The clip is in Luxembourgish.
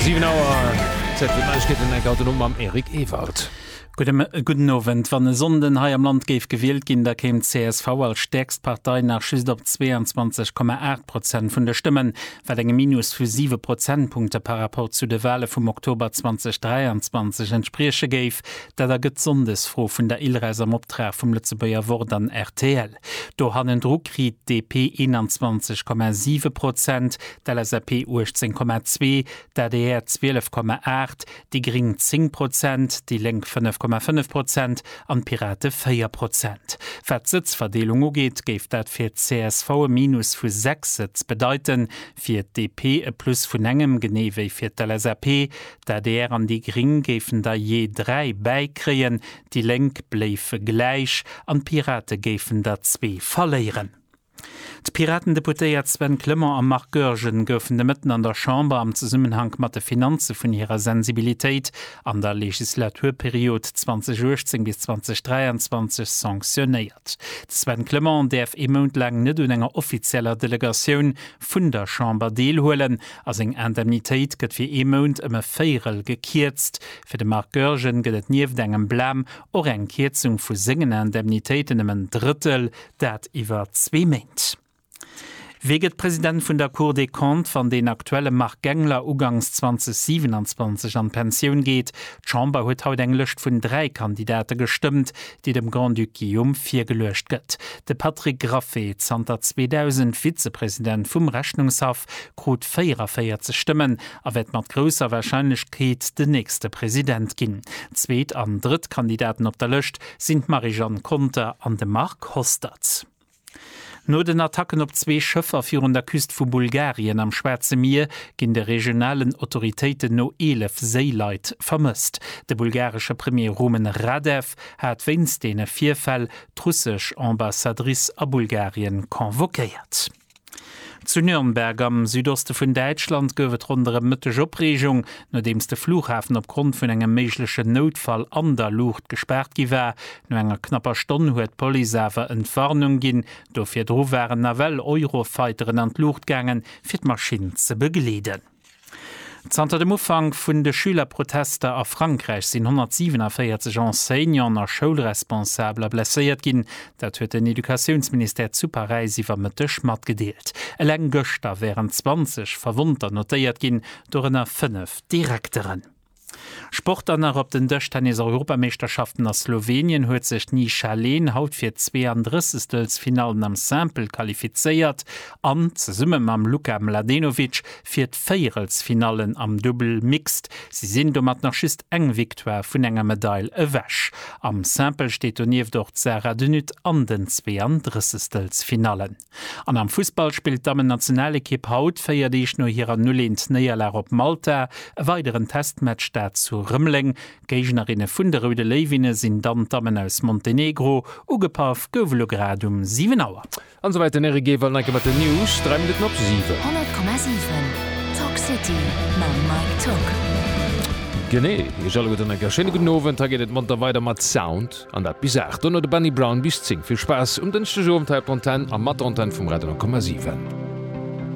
7 Auer, Zäit fir d'Neiegkeeten, enk haut den Owend mam Eric Ewald. Gudden Owend. Wann e Sonnden hei am Land géif gewielt ginn, da kéim csv als stäerkst Partei nach just op 22,8 Prozent vun de Stëmmen, wat engem Minus vu 7 Prozentpunkte par Rapport zu de Wale vum Oktober 2023 entsprieche géif. Dat ergëtt d'Sonndesfro vun der Ilres am Optrag vum Lëtzebuerger Wort an rtl. Do hannendru kritt d'DP 21,7 Prozent, d'LSAP 18,2, d'ADR 12,8, déi Gring 10 Prozent, déi Lénk 5,5 Prozent an d'Pirate 4 Prozent. Wat d'Sëtzverdeelung ugeet, géif dat fir d'CSV e Minus vu 6 Sëtz bedeiten, fir d'DP e Plus vun engem, genee wéi fir d'LSAP. D'ADR an déi Gring géifen der jee 3 bäikréien, Déi Lénk bléife gläich an d'Pirate géifen der zwee verléieren. D'Piraten-Deputéiert Sven Clement a Marc Goergen goufen de Mëtten an der Chamber am Zesummenhank mat de Finanze vun hirer Sensibilitéit an der Legislaturperiod 2018 bis 2023 sanctionéiert. De Sven Clement däerf ee Mount laang net un enger offizieller Delegatioun vun der Chamber deelhuelen a seng Indemnitéit gëtt fir ee Mount ëm e Véierel gekierzt, Fir de Marc Goergen gëtt et nieft engem Blam och eng Kierzung vu sengen Indemnitéiten ëm en Drëttel, dat iwwer zwee Méint. Wie gëtt President vun der Cour des Comptes, wann deen aktuelle Marc Gangler ugangs 2027 an d'Pensioun geet? D'Chamber huet haut eng Lëscht vun dräi Kandidate gestëmmt, déi dem Grand-Duc Guillaume virgeluecht gëtt. De Patrick Graffe, zanter 2000 Vizepresident vum Rechnungshaff, krut 44 Stëmmen a wäert mat grousser Warscheinlechkeet den nächste President ginn. Zweet an drëtt Kandidaten op der Lëscht sinn d'Marie-Jeanne Conter an de Marc Hostert. No den Attacken op zwee Schëffer virun der Küst vu Bulgarien am Schwaarze Mier ginn de regionalen Autoritéiten no 11 Séileit vermësst. De bulgaresche Premier Rumen Radev hat wéinst deene Virfäll d'russesch Ambassadrice a Bulgarien convoquéiert. Zu Nürnberg am Südoste vun Däitschland gouf et ronderëm Mëtteg Opreegung, nodeems de Flughafen opgrond vun engem méiglechen Noutfall an der Luucht gespaart gi war. No enger knapper Stonn huet d'Police awer Entwarnung ginn. Do virdru waren nawell Eurofighteren an d'Luucht gaangen, fir d'Maschinn ze begleeden. Zanter dem Ufank vun de Schülerprotester a Frankräich sinn 147 Enseignanten a Schoulresponsabler blesséiert ginn. Dat huet den Educatiounsministère zu Paräis iwwer Mëtteg matgedeelt. Eleng gëschter wären 20 Verwonnter notéiert ginn, dorënner fënnef Direkteren. Sport dann nach, Op den Dëschtennis-Europameeschterschaften a Slowenien huet sech d'Nisha Len haut fir d'Zweeanddrëssegstelsfinallen am Simple qualifizéiert an, zesumme mam Luka Mladenovic, fir d'Véierelsfinallen am Dubbel Mixed. Si sinn domat nach just eng Victoire vun enger Medail ewech. Am Simple steet donieft och d'Sara de Nutte an den Zweeanddrëssegstelsfinallen. An am Fussball spillt d'Dammennationalekipp haut, 4 Deeg no hirer 0, 1 Néierlag op Malta, e weideren Testmatch, dat zu Rëmeleng. Géignerinne vun de Roude Léiwinne sinn dann d'Dammen aus Montenegro. Ugepaff gouf elo grad um 7 Auer. An esouwäit den Eric Gay, Wallenenke mat den News, 3 Minutten op 7. 100,7 Talk City mam Mike Tock. Genee, Iech alleguerten eng kéier schéine gudden Owend. Hei geet et monter weider mat Sound. An dat bis 8, dono de Benny Brown bis 10. Vill Spaass um Dënschdegowend hei op der Antenn a mat der Antenn vum Radio 9,7.